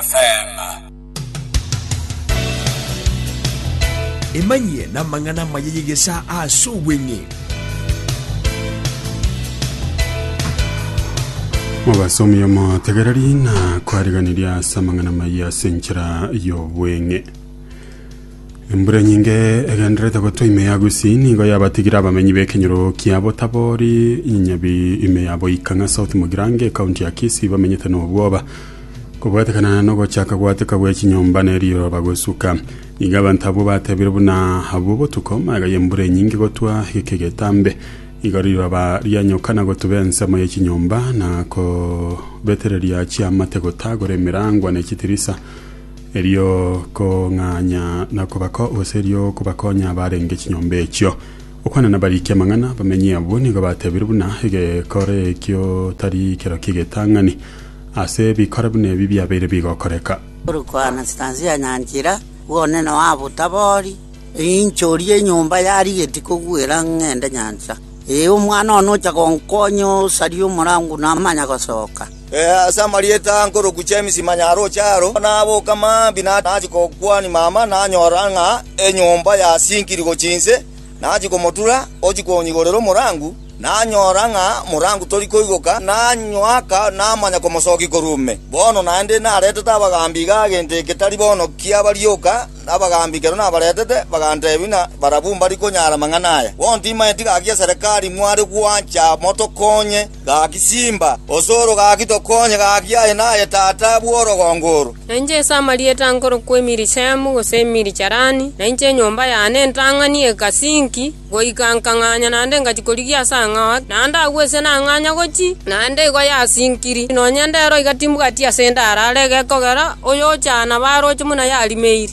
Nyasae. Emanyie namang'ana amaya y'egesaa ase obweng'e. Obasomi omotegereri na kwariganiria ase amang'ana maiyo ase enchera y'obweng'e embura nyinge egenderete gotwa ime ya gusii nigo yabatigire abamenyi b'ekenyoro kia botabori inyabi ime ya boikang'a south mogirange ekaunti ya kisii bamenyete n'obwoba Kobwatekana nogochaka gwateka gwe chinyomba ne riroba gosuka, nigo abanto abwo batebire buna abwo botuko, magega y'embura enyinge gotwa egeka egetambe. Igo riroba rianyoka na gotuba ensemo ye chinyomba na kobetereria chiamate gotagora emerangwa ne chitirisa, erio kong'anya na kobako gose erio kobakonya abarenge chinyomba echio. Okwana nabariki amang'ana, abamenyi abwo nigo batebire buna egekore ekio tari kero ki'egetang'ani. ase ebikora buna ebi biabeire bigokoreka. Korokwa Anastasia ya Nyanchira, bw'onene wa Butabori, ninchorie enyomba yarigetie kogwera ng'ende nyancha. Ee, omwana one ocha gonkonya osarie omorango namanya gosoka. Ase amarieta a nkorokwa James Manyaroche aro, naboka mambia nachia gokwania mama, nanyora ng'a enyomba yasinkiri gochia inse. Nachia komotura, ochia konyigorera omorangu, nanyora ng'a omorangu tori koigoka, nanywaka, namanya komosokia korwa ime. Bono naende naretete abagaambi iga gento eke tari bono kiaba rioka, na abagaambi ekero nabaretete, bagantebia ng'a barabwo mbari konyara amang'ana aya. Bono timaeti gaki eserekari mware gwancha motokonye. Gaki simba, osoro, gaki tokonye, gaki aye naye tata bw'orogongo oro. Na inche ase amarieta nkorokwa Emirishemu, gose Emiricharani, na inche enyomba yane ntang'ani egasi inki, goika nkang'anya naende ngachia korigia ase ang'ao ake, naende agwo ise nang'anya gochia, naende igo yasinkiri, nonya endero iga timbwati asende arare egekogera, oyochana barooche buna yarimeire.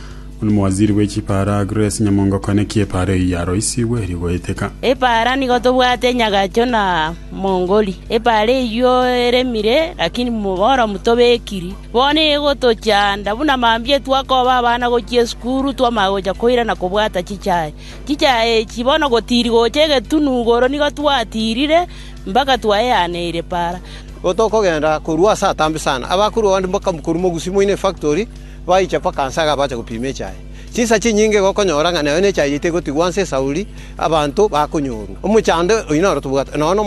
Omowaziri bwe chipaaro agress nyamongo kane ki epaaro eyio yaroisigwe eri goeteka. Epaara nigo tobwate nyagacho na mongori. Epaara eyio eremire, lakini boromu tobekiri. Bono egotochanda buna mambia etwakoba abana gochia esukuru twamanya gocha koira na kobwata chichae. Chichae echi bono gotiri gocha egetunu igoro nigo twatirire mpaka twaeaneire epaara. Otokogenda korwa ase atambe sana, abakure onde mpaka korwa mogusi moino efactori. Baicha mpaka nse iga bacha gopima echaye. Chinsa chinyinge iga okonyora ng'a nayo nechaye yaito egotigwa nse esauri, abanto bakonyorwa. Omochando oyio noro tobwate nonya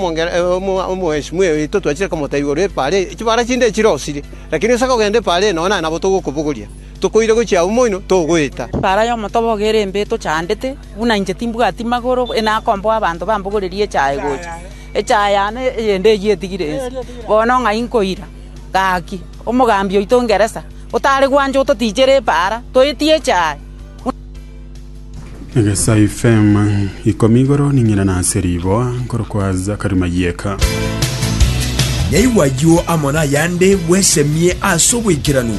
omwesimiwa oito twachire komotebia igoro y'ebipaara eye, chibara chinde chirosirie, lakini gose akogenda ebipaara eye nonya naye nabo togokobogoria, tokoira gochia abwo moino, togoeta. Ebipaara y'omotoba ogo ere mbe etochandete, buna inche timbwati magoro, e nakomboa abanto bambogorerie echaye gocha. Echaye yane eyende eyio etigire nse, bono ng'ai nkoira? Gaki! Omogambi oito Ngeresa, otare gwancha ototichere epaara, toetieche aaye. Egesaifema ikomi igoro ning'ina na ase riboa, nkorokwa Zakarimayieka. Naigwa ayio amo nayande bwesemie ase oboikeranu.